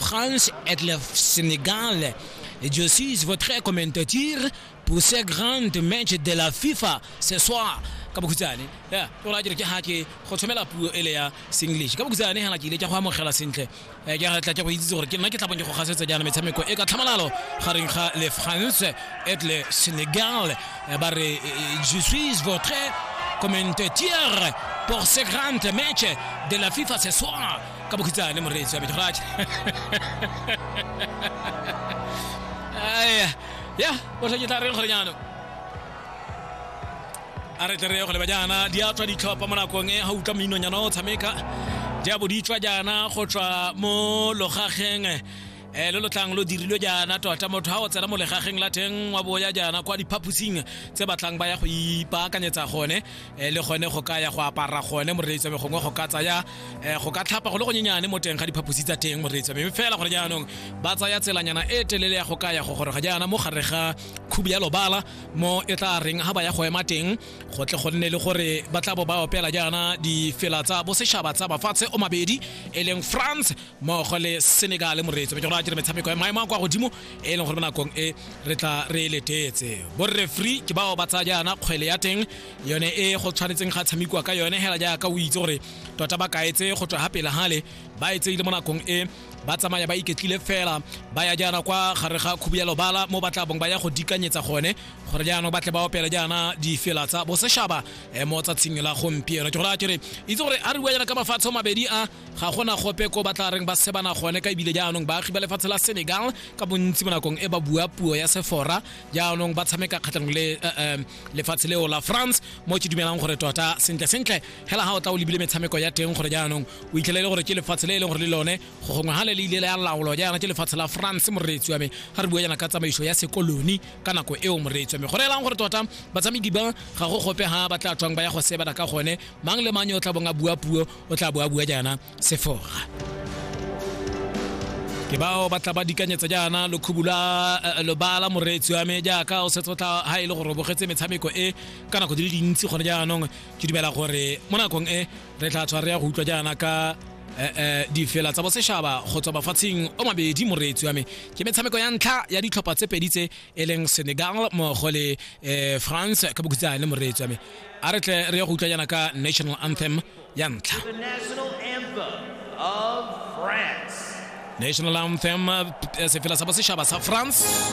France et le Sénégal. Je suis votre commentateur pour ce grand match de la FIFA ce soir. ka bokhutshwane ya tlola dire ke ga ke go tshomela puo ele ya senglish ka bokhutshwane ga ke ile ke go amogela sentle eh, ke tla ke go itse gore ke nna ke tlabong ke go gasetsa jaana metshameko e ka tlhamalalo gareng ga le france et le sénégal eh, ba re eh, je suis votre commentateur pour ce grand match de la fifa ce soir ka bokhitsane moreetsi wa me joraja aya ya o tlhoke tla reng gore jaanong a re tle re ye go leba jaana di a tswa ditlhopha mo nakong e ga utlwa meinong jaana o tshameka di a bo di tswa jaana go tswa mo logageng um lo lotlang lo dirilwe jaana tota motho ga o tsena mo legageng la teng wa boya jaana kwa diphaposing tse batlang ba ya go ipaakanyetsa gone um le gone go ka ya go apara gone moreetsame gongwe go ka tsaya um go ka tlhapa go le gonyenyane mo teng ga diphaposi tsa teng moreetsame mme fela gore jaanong ba tsaya tselanyana e telele ya go ka ya go gore ga jaana mo gare ga khubi ya lobala mo e tla reng ga ba ya go ema teng go tle go nne le gore ba tla bo ba opela jaana difela tsa bosetšhaba tsa mafatshe o mabedi e leng france mmogo le senegale moreetsi ke gore a dire metshameko ya maemo a kwa godimo e leng gore mo nakong e re tla re e letetse borre free ke bao ba tsaya jaana kgwele ya teng yone e go tshwanetseng ga tshamekiwa ka yone hela jaaka o itse gore tota ba kaetse go tswa ga pele gale ba e tseile mo nakong e ba tsamaya ba iketlile fela ba ya jaana kwa gare ga khubu ya lobala mo ba tla bong ba ya go dikanyetsa gone gore jaanong ba tle ba opela jaana difela tsa boseshaba eh, mo tsatsing la gompieno ke gore a kere itse gore a re bua jaana ka mafatshe mabedi a ga gona gope ko ba tla reng ba sebana gone ka ebile jaanong baagi ba lefatshe la senegal ka bontsi mo nakong e ba bua puo ya sefora jaanong ba tshameka kgatlhanong le eh, eh, lefatshe leo la france mo ke dumelang gore tota sentle sentle hela ga o tla o lebile metshameko ya teng gore jaanong o itlhelele gore ke lefatshe le e leng gore le lone go gongwe ga le le ile la laolo jaana ke lefatshe la france moreetsi wa me ga re bua jaana ka tsamaiso ya sekoloni ka nako eo moreetsi wa me gore elang gore tota batsamedi ba ga go gope ga ba tla tswang ba ya go sebana ka gone mang le mang yo o tla bong a bua puo o tla bo a bua jaana sefora ke bao ba tla ba dikanyetsa jaana lokhubu la eh, lobala moreetsi wa me jaaka o setse o tla ha e le gore o bogetse metshameko e ka nako di le dintsi gone jaanong ke dumela gore mo nakong e re tla tshwa re ya go utlwa jaana ka eh, eh, difela tsa bosešhaba go tswa mafatsheng o mabedi moreetsi wa me ke metshameko ya ntlha ya ditlhopha tse pedi tse e leng senegal mmogo le eh, france ka bokhutsane moreetsi wa me a re tle re ya go utlwa yana ka national anthem ya ntlha national anthem eh, sefela sa bosetšhaba sa france